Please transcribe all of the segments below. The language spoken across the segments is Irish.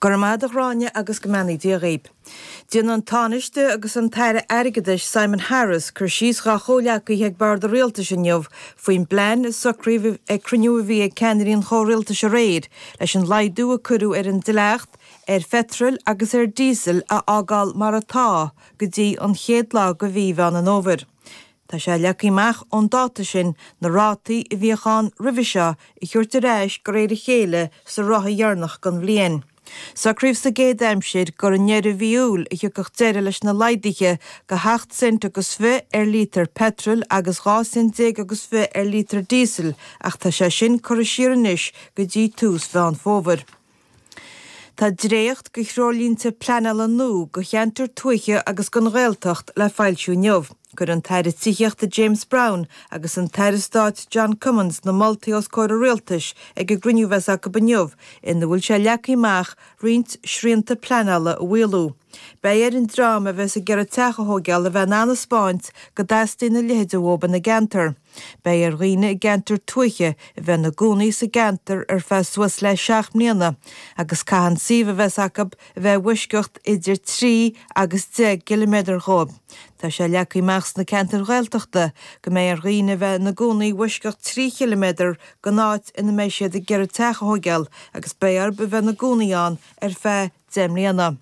Go raibh maith ag Ghráinne agus go mbeannaí Dia dhaoib. Déanann an Tánaiste agus an tAire Airgeadais Simon Harris cur síos dhá chomhghleacaithe ag Bord an Rialtais inniu faoin bplean a socraíodh ag cruinniú a bhí ag ceannairí an Chomhrialtais aréir leis an laghdú a cuireadh ar an dleacht ar pheitreal agus ar dhíosal a fhágáil mar atá go dtí an chéad lá de Mhí Mheán an Fhómhair Tá sé leagtha amach ón dáta sin na rátaí a bhíodh ann roimhe seo a thabhairt ar ais de réir a chéile sa ráithe dheireanach den bhliain. Socraíodh sa gcéad aimsir gur i ndeireadh mhí Iúil a thiocfadh deireadh leis na laghduithe de sheacht cent agus fiche ar lítear peitril agus dhá cent déag agus fiche ar lítear díosail ach tá sé sin curtha siar anois go dtí tús Mheán Fómhair. Tá dréacht de threoirlínte pleanála nua do cheantair tuaithe agus don Ghaeltacht le foilsiú inniu. Cuirfidh an tAire Tithíochta James Browne agus an tAire Stáit John Cummins na moltaí os comhair an Rialtais ag an gcruinniú a bheas acu inniu ina bhfuil sé leagtha amach roinnt srianta pleanála a mhaolú. Beidh ar an dream a bheas ag iarraidh teach a thógáil a bheith in ann a 'speáint go dteastaíonn a leithéid uathu ina gceantar. Beidh ar dhaoine i gceantar tuaithe a bheith ina gcónaí sa gceantar ar feadh suas le seacht mbliana agus caithfidh an suíomh a bheas acu a bheith i bhfoisceacht idir trí agus deich gciliméadar dhóibh. Tá sé leagtha amach sna ceantair Ghaeltachta go mbeidh ar dhaoine a bheith ina gcónaí i bhfoisceacht trí chiliméadar den áit ina mbeidh siad ag iarraidh teach a thóigeáil agus beidh orthu a bheith ina gcónaí ann ar feadh deich mbliana.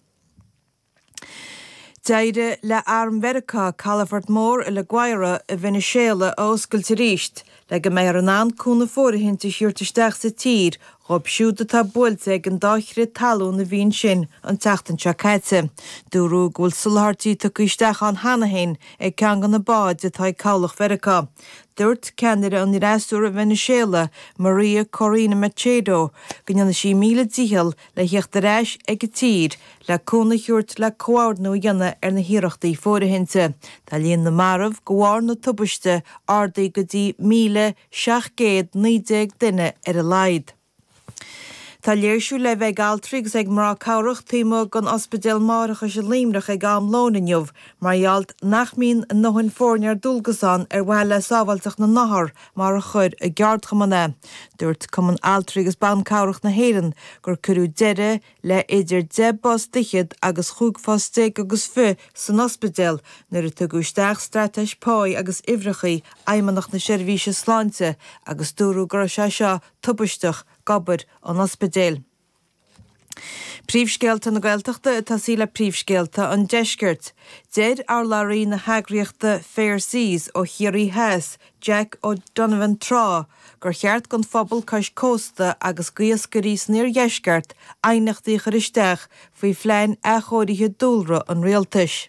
D'éirigh le Arm Mheiriceá calafort mór i La Guaira i Veiniséala a oscailt arís, le go mbeifear in ann cúnamh fóirithinte a thabhairt isteach sa tír dhóibh siúd atá buailte ag an dá chrith talún a bhí ansin an tseachtain seo caite. Dúradh go bhfuil soláthairtí tugtha isteach ann cheana féin ag ceann de na báid atá ag Cabhlach Mheiriceá. Dúirt ceannaire an fhreasúra i Veiniséala, María Corina Machado, go ndéanfaidh sí míle dícheall le theacht ar ais ag an tír, le cúnamh a thabhairt, le comhordnú a dhéanamh ar na hiarrachtaí fóirithinte, tá líon na marbh, de bharr na tubaiste, ardaithe go dtí 1,719 duine ar a laghad. Tá léirsiú le bheith ag altraí agus ag mná cabhrach taobh amuigh den Ospidéal Máithreachais i Luimneach ag am lóin inniu mar gheall nach mbíonn a ndóthain foirne ar dualgas ann ar mhaithe le sábháilteacht na n-othar, mar a chuir a gceardchumann é. Dúirt Cumann Altraí agus Ban Cabhrach na hÉireann gur cuireadh deireadh le idir deich bpost fhichead agus chúig phost déag agus fiche san ospidéal nuair a tugadh isteach straitéis páí agus uimhreachaí Fheidhmeannacht na Seirbhíse Sláinte agus dúradh go raibh sé seo tubaisteach d'obair an ospidéil. Príomhscéalta na Gaeltachta ag tosaí le príomhscéalta an Deiscirt. Deir urlabhraí na heagraíochta Fair Seas ó Chiarraí Theas, Jack O'Donovan Trá gur cheart don phobal cois cósta agus d'iascairí san iardheisceart aighneachtaí a chur isteach faoi phlean athchóirithe dúlra an rialtais.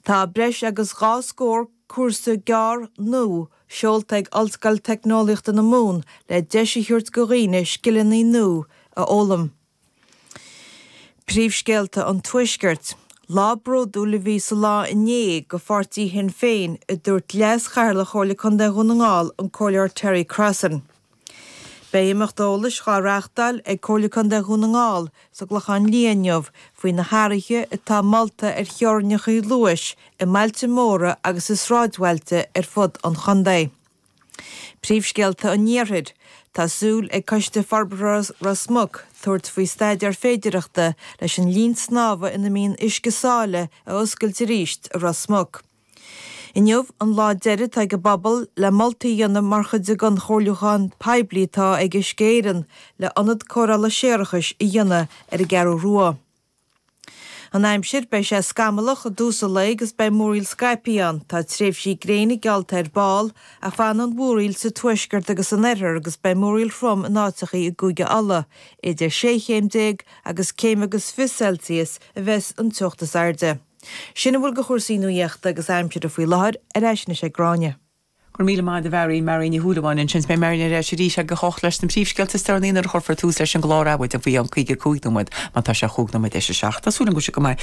Tá breis agus dhá scór cúrsa gearr nua. Seolta ag Ollscoil Teicneolaíochta na Mumhan le deis a thabhairt go dhaoine scileanna nua a fhoghlaim. Príomhscéalta an Tuaiscirt. Lá bródúil a bhí sa lá inné go Pháirtí Shinn Féin, a dúirt Leas-Chathaoirleach Chomhairle Contae Dhún na nGall, an Comhairleoir Terry Crossan. Beidh imeacht eolais dhá reáchtáil ag Comhairle Contae Dhún na nGall sa gClochán Liath inniu faoi na hathruithe atá molta ar theorainneacha luais i mbailte móra agus i sráidbhailte ar fud an chontae. Príomhscéalta an Iarthair Tá súil ag Coiste Forbartha Ros Muc tabhairt faoi staidéar féidireachta leis an linn snámha ina mbíonn uisce sáile a oscailt arís i Ros Muc. Inniu an lá deiridh atá ag an bpobal le moltaí a dhéanamh mar chuid den chomhairliúchán poiblí atá ag Uisce Éireann le Ionad Cóireála Séarachais a dhéanamh ar an gCeathrú Rua. An aimsir, beidh sé scamallach i dtús an lae agus beidh múraíl scaipthe ann. Tá tréimhsí gréine geallta ar ball, ach fanfaidh an mhúraíl sa tuaisceart agus san oirthear agus beidh múraíl throm in áiteachaí i gCúige Uladh. Idir sé chéim déag agus céim agus fiche Celsius a bheas an teocht is airde. Sin a bhfuil de chúrsaí nuaíochta agus aimsire faoi láthair, ar ais anois ag Gráinne. Go raibh míle maith agat a Mharion, Marion Ní Shúilleabháin ansin, is beidh Marion ar ais arís ag a hocht leis na príomhscéalta is deireanaí nuair a chuirfear tús leis an gclár Adhmhaidin faoi cheann 55 nóiméad, mar tá sé 5 nóiméad tar éis a 7. Tá súil agam go bhfuil sibh go maith